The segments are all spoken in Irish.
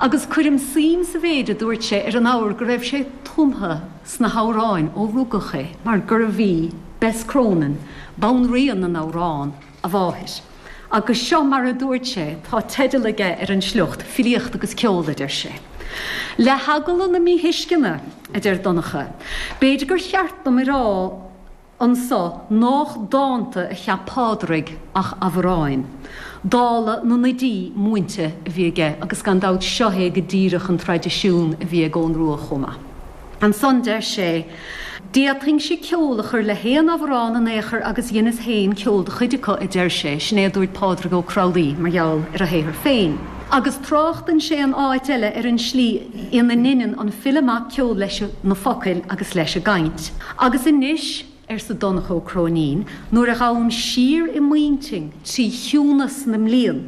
Agus cuirim suim sa mhéid a dúirt sé ar an abhar go raibh sé tumtha sna hamhráin ó rugadh é mar gurbh í Bess Cronin, banríon na n-amhrán, a mháthair. Agus seo mar a dúirt sé, tá teideal aige ar an sliocht, 'Filíocht agus Ceol', a deir sé. Le heagla na míthuisceana, a deir Donncha, b'fhéidir gur cheart dom a rá, anso nách dánta a cheap Pádraig ach abhráin, dála na n-oidí múinte a bhí aige, agus gan dabht seo é go díreach an traidisiún a bhí ag Eoghan Rua chomh maith. Ansan deir sé, 'D'fhéadfainnse ceol a chur le haon abhrán in aon chor agus dheineas féin ceol do chuid acu', a deir sé, sin é a dúirt Pádraig Ó Crualaoi mar gheall ar a shaothar féin. Agus tráchtann sé in áit eile ar an tslí ina ndeineann an file amach ceol leis na focail agus leis an gcaint. Agus anois, arsa Donncha Ó Cróinín, nuair a ghabhaim siar i m'intinn trí chiúnas na mblian,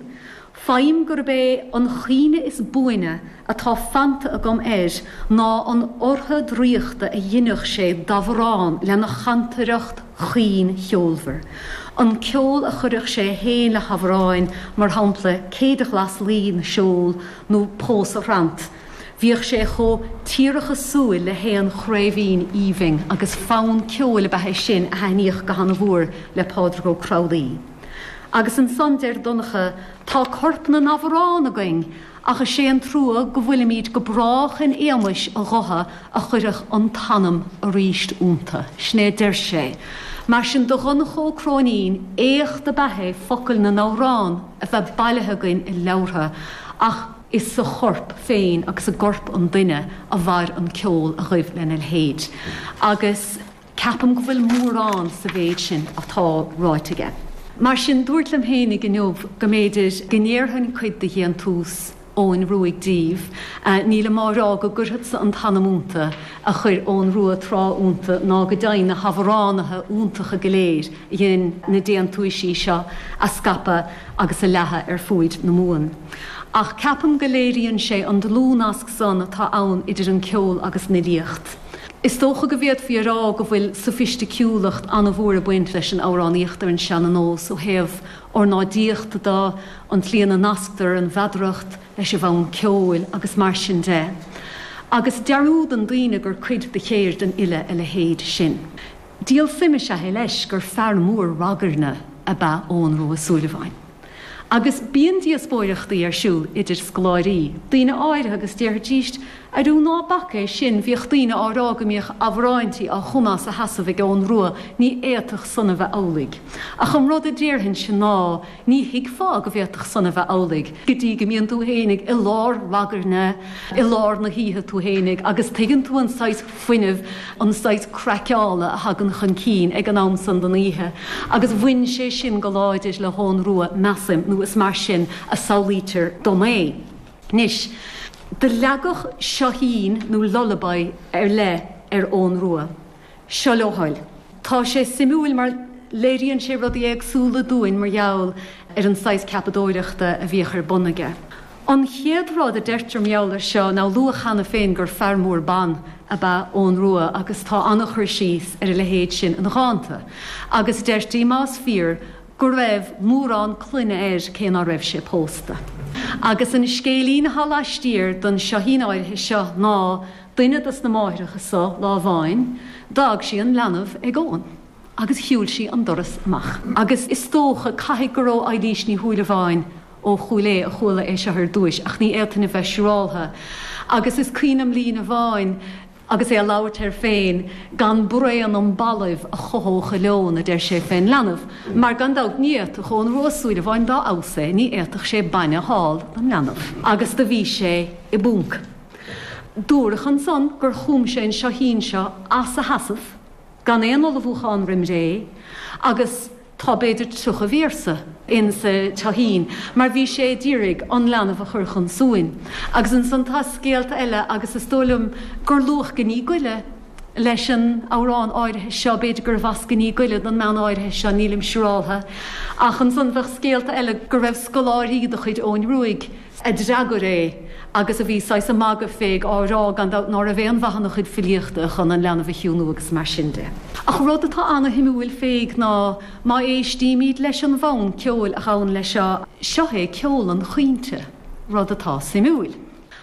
faighim gurb é an chuimhne is buaine atá fanta agam air ná an ortha dhraíochta a dheineadh sé d'amhrán lena chantaireacht chaoin cheolmhar, an ceol a chuireadh sé fhéin le hamhráin, mar shampla, Céide Ghlas Laoi na Seol nó Pósadh Thrant. Bhíodh sé chomh tíorthachasúil le haon chraobhín aoibhinn agus fonn ceoil ab ea é sin a thaitníodh go hana-mhór le Pádraig Ó Crualaoi. Agus ansan, deir Donncha, tá corp na n-amhrán againn ach is é an trua go bhfuilimíd go brách in éamais a ghutha a chuireadh an t-anam arís iontu. Sin é a deir sé. Mar sin do Dhonncha Ó Cróinín, éacht ab ea é focail na n-amhrán a bheith bailithe againn i leabhartha ach, Is sa chorp féin agus i gcorp an duine a mhair an ceol a ghaibh lena leithéid agus ceapaim go bhfuil mórán sa mhéid sin atá ráite aige. Mar sin, dúrt liom fhéinig inniu go mb'fhéidir go ndéarfainn cuid de dhéantús Eoghain Ruaidh díbh. Nílim á rá go gcuirfeadsa an t-anam ionta a chuir Eoghan Ruadh tráth ionta ná go deimhin na hamhránaithe iontacha go léir a dhein na déantúisí seo a scaipeadh, agus a leathadh ar fuaid na Mumhan. Ach ceapaim go léiríonn sé an dlúthnasc san atá ann idir an ceol agus an fhilíocht. Is dócha go bhféadfaí a rá go bhfuil sofaisticiúlacht an-mhór ag baint leis an amhránaíocht ar an seana-nós ó thaobh ornáidíochta de, an tslí ina nasctar an mheadaracht leis an bhfonn ceoil agus mar sin de. Agus dearúdann daoine gur cuid de cheird an fhile a leithéid sin. Díol suime is ea é leis gur fear mór ragairne ab ea Eoghan Rua Ó Súilleabháin. Agus bíonn díospóireachtaí ar siúl idir scoláirí, daoine áirithe, agus déarfaidís, Arú ná bac é sin, bhíodh daoine á rá go mbíodh amhráintí á chumadh as a sheasamh ag Eoghan Rua, ní fhéadfadh san a bheith amhlaidh. Ach an rud a déarfainnse ná. Ní thuigfeá go bhféadfadh san a bheith amhlaidh go dtí go mbíonn tú féinig i lár ragairne i lár na hoíche tú féinig agus tuigeann tú an saghas fuinnimh, an saghas craiceála a thagann chun cinn ag an am san den oíche agus bhain sé sin go láidir le hEoghan Rua, measaim, nó is mar sin a samhlaítear dom é. Anois, do leagadh seoithín nó lullaby ar leith ar Eoghan Rua. seo leo thoil. Tá sé suimiúil mar léiríonn sé rudaí éagsúla dúinn mar gheall ar an saghas ceapadóireachta a bhíodh ar bun aige. An chéad rud a deirtear mar gheall air seo ná, luadh cheana féin gur fear mór ban ab ea Eoghan Rua agus tá an-chur síos ar a leithéid sin ina dhánta agus deirtí, más fíor, go raibh mórán clainne air cé ná raibh sé pósta. Agus an scéilín atá laistiar den seoithín áirithe seo ná, Duine dos na máithreacha so, lá amháin, d'fhág sí an leanbh ag Eoghan agus shiúil sí an doras amach. Agus is dócha, caithfidh, gur ag Eilís Ní Shúilleabháin ó Chúil Aodha a chuala é seo ar dtúis, ach ní fhéadfainn a bheith siúráltha, agus is cuimhin liom líne amháin agus é ag labhairt air féin, gan braon im ballaibh a chothódh a leon, a deir sé, fén leanbh, mar gan dabht ní fhéadfadh Eoghan Rua Ó Súilleabháin, dá fheabhas é, ní fhéadfadh sé bainne a thál don leanbh. Agus do bhí sé i bpúnc. Dúradh ansan gur chum sé an Seoithín seo as a sheasamh, gan aon ullmhúchán roim ré, agus tá b'fhéidir tríocha véarsa insa Seoithín, mar bhí sé a d'iarraidh an leanbh a chur chun suain. Agus ansan tá scéalta eile, agus is dóigh liom gur luadh Gníomh go Leith leis an amhrán áirithe seo, b'fhéidir gurbh as Gníomh go Leith don mbean áirithe seo, nílim siúráltha. Ach ansan tá scéalta eile go raibh scoláirí de chuid Eoghain Ruaidh, a d'fhreagair é agus a bhí saghas ag magadh fé ag á rá gan dabht ná raibh aon mhaith ina chuid filíochta chun an leanbh a chiúnú agus mar sin de. Ach rud atá ana-shuimiúil fé ná má éistímíd leis an bhfonn ceoil a ghabhann leis seo, seo é ceol an chaointe, rud atá suimiúil.